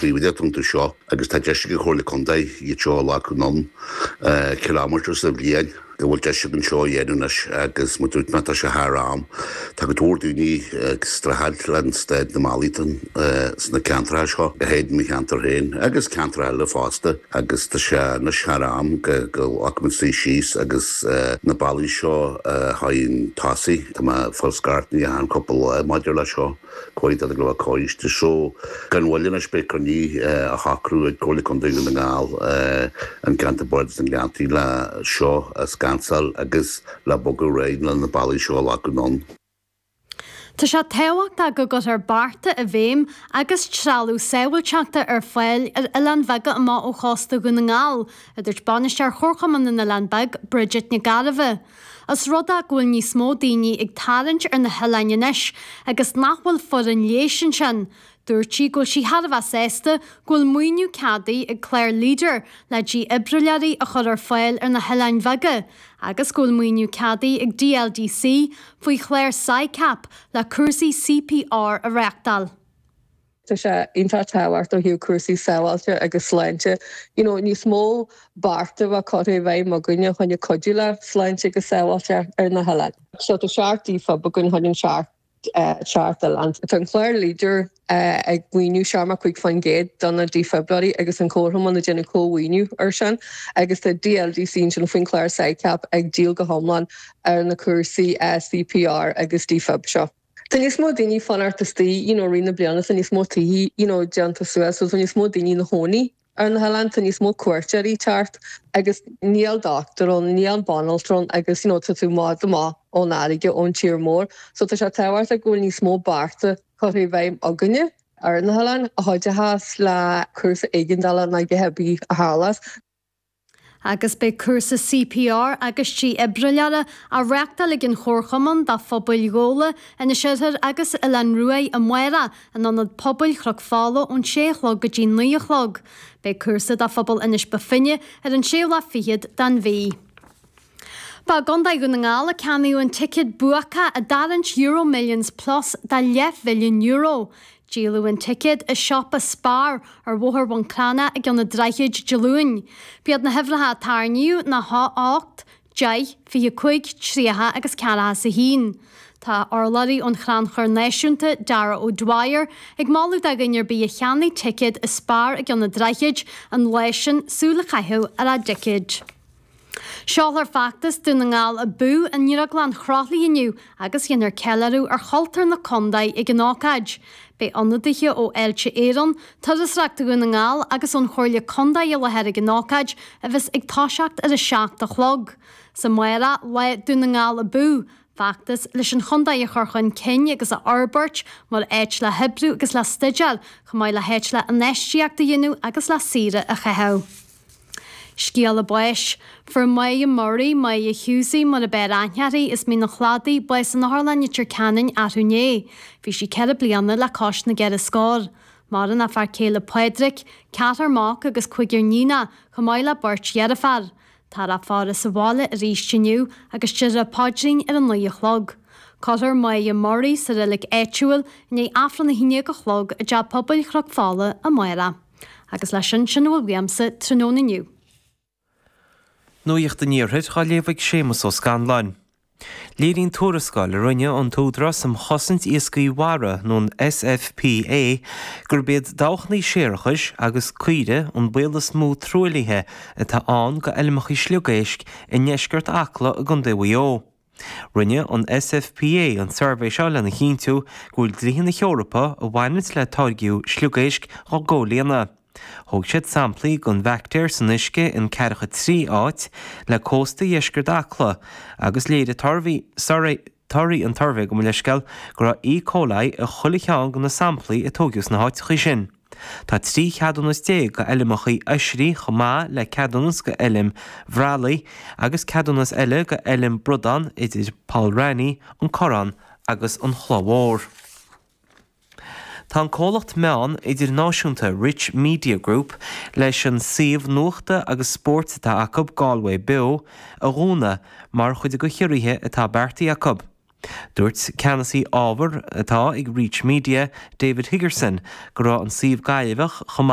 taobh den fhiontar seo agus tá deis ag an Chomhairle Contae iad seo a ghlacadh anonn kilometres sa bhliain go bhfuil deis againn seo a dhéanamh anois agus mar dúirt mé tá sé thar am. Tá go leor daoine ag streachailt le staid na mbealaí sna ceantracha seo, go háirithe i mo cheantar féin agus ceantracha eile fosta agus tá sé anois thar am go nglacfaimid suí síos agus na bealaí seo a thabhairt chun tosaigh, tá mé ag fáil scairteanna achan chúpla lá maidir leis seo. Comhairle Contae Dhún na nGall coiste seo gan mhoill anois beidh cruinniú á shocrú ag Comhairle Contae Dhún na nGall, an Ceantar Bardais na nGleanntaí le seo a scansáil agus le bogadh ar aghaidh le na bealaí seo a ghlacadh anonn. Tá sé tábhachtach go gcuirfear bearta i bhfeidhm agus trealamh sábháilteachta ar fáil ar oileáin bheaga amach ó chósta Dhún na nGall, a dúirt Bainisteoir Chomharchumann na nOileán Beag, Bridget Nic Gairbheith. Os rud é go bhfuil níos mó daoine ag tarraingt ar na hoileáin anois agus nach bhfuil foireann leighis ansin, dúirt sí go bhfuil sí thar a bheith sásta go bhfuil maoiniú ceadaithe ag clár Leader le dífhibrileoirí a chur ar fáil ar na hoileáin bheaga agus go bhfuil maoiniú ceadaithe ag DLDC faoi chlár SICAP le cúrsaí CPR a reáchtáil. Tá sé iontach tábhachtach ó thaobh cúrsaí sábháilte agus sláinte you know níos mó bearta a bheith curtha i bhfeidhm againne fá choinne cuidiú le sláinte agus sábháilte ar na hoileáin. So tá seacht defib againn chun an seacht seacht oileán. Tá an clár leader ag maoiniú seachtó cúig faoin gcéad do na dífhibrileoirí agus an comharchumann ag déanamh comh-mhaoiniú ar sin agus tá DLDC ansin faoin chlár SICAP ag díol go hiomlán ar na cúrsaí CPR agus defib seo. Tá níos mó daoine ag fanacht istigh you know i rith na bliana tá níos mó tithe you know déanta suas so tá níos mó daoine ina gcónaí ar na hoileáin tá níos mó cuairteoirí ag teacht agus níl dochtúir ann níl banaltra ann agus you know tá tú maith amach ón fharraige ón tír mór so tá sé tábhachtach go bhfuil níos mó bearta curtha i bhfeidhm againne ar na hoileáin a chuideochas le cúrsaí éigeandála nó a dhath ar bith a tharlas agus beidh cúrsa CPR agus dífhibrileora á reáchtáil ag an Chomharchumann do phobail Ghabhla, Inis Oirthir agus Oileán Uaighe amárach in Ionad Pobail Chnoc Fola ón 6 a chlog go dtí 9 a chlog. Beidh cúrsa do phobal Inis Bó Finne ar an séú lá fichead den mhí. Ba i gContae Dhún na nGall a ceannaíodh an ticéad buacach i dtarraingt EuroMillions Plus de leathmhilliún euro. Díoladh an ticéad i siopa Spar ar Bhóthar Bhun Cranncha i gCionn an Droichid Dé Luain. B'iad na huimhreacha a tarraingíodh ná a hocht, deich, fiche cúig, tríocha agus ceathracha is a haon. Tá urlabhraí ón Chrannchur Náisiúnta, Darragh O'Dwyer, ag moladh do dhuine ar bith a cheannaigh ticéad i Spar i gCionn an Droichid an lá sin súil a chaitheamh ar a dticéid. Seolfar Feachtas Dún na nGall Abú i nDrioglann Chroithlí inniu agus dhéanfar ceiliúradh ar chultúr na contae ag an ócáid. Beidh ionadaithe ó Fháilte Éireann, Turasóireacht Dhún na nGall agus ón Chomhairle Contae i láthair ag an ócáid a bheas ag toiseacht ar a seacht a chlog. Is amárach Lá Dún na nGall Abú! Feachtas leis an chontae a chur chun cinn agus a fhorbairt mar áit le hoibriú agus le staidéar, chomh maith le háit le infheistíocht a dhéanamh agus le saoire a chaitheamh. Scéala báis. Fuair Moya Murray, Moya Hughesie, mar ab fhearr aithne uirthi as Mín an Chladaigh, bás in Otharlann Leitir Ceanainn arú inné. Bhí sí ceithre bliana le cois na gceithre scór. Maireann a fear céile Pádraic, ceathrar mac agus cúigear níonacha, chomh maith le beirt dheirféar. Táthar á faire sa bhaile arís inniu agus déarfar an paidrín ar a naoi a chlog. Cuirfear Moya Murray sa reilig áitiúil i ndiaidh Aifreann a haon déag a chlog i dTeach Pobail Chnoc Fola, amárach. Agus leis sin, sin a bhfuil uaimse tráthnóna inniu. Nuacht an Iarthair á léamh ag Séamus Ó Scanláin. Léiríonn tuarascáil a rinne an tÚdarás um Chosaint Iascaigh Mhara, nó an SFPA, gurb iad dabhchannaí séarachais agus caoirigh an baol is mó truaillithe atá ann d'fheilmeacha sliogéisc i ndeisceart Acla i gContae Mhaigh Eo. Rinne an SFPA an suirbhé seo lena chinntiú go bhfuil dlíthe na hEorpa a bhaineanns le táirgeadh sliogéisc á gcomhlíonadh. Thóg siad samplaí den bhaictéar san uisce in Ceathracha Trí áit, le cósta dheisceart Acla, agus léirigh torthaí an tsuirbhé gabh mo leithscéal go raibh E. coli i chuile cheann de na samplaí a tóigeadh sna háiteachaí sin. Tá trí cheadúnas déag go fheilmeachaí oisrí chomh maith le ceadúnas go fheilm bhreallaigh agus ceadúnas eile go fheilm bradán idir Poll Raithní, An Corrán agus An Chloich Mhór. Tá an comhlacht meán idirnáisiúnta Reach Media Group leis an suíomh nuachta agus spóirt atá acu, Galway Beo, a dhúnadh mar chuid de chiorruithe atá beartaithe acu. Dúirt Ceannasaí Ábhar atá ag Reach Media, David Higgerson, go raibh an suíomh Gaillimheach chomh.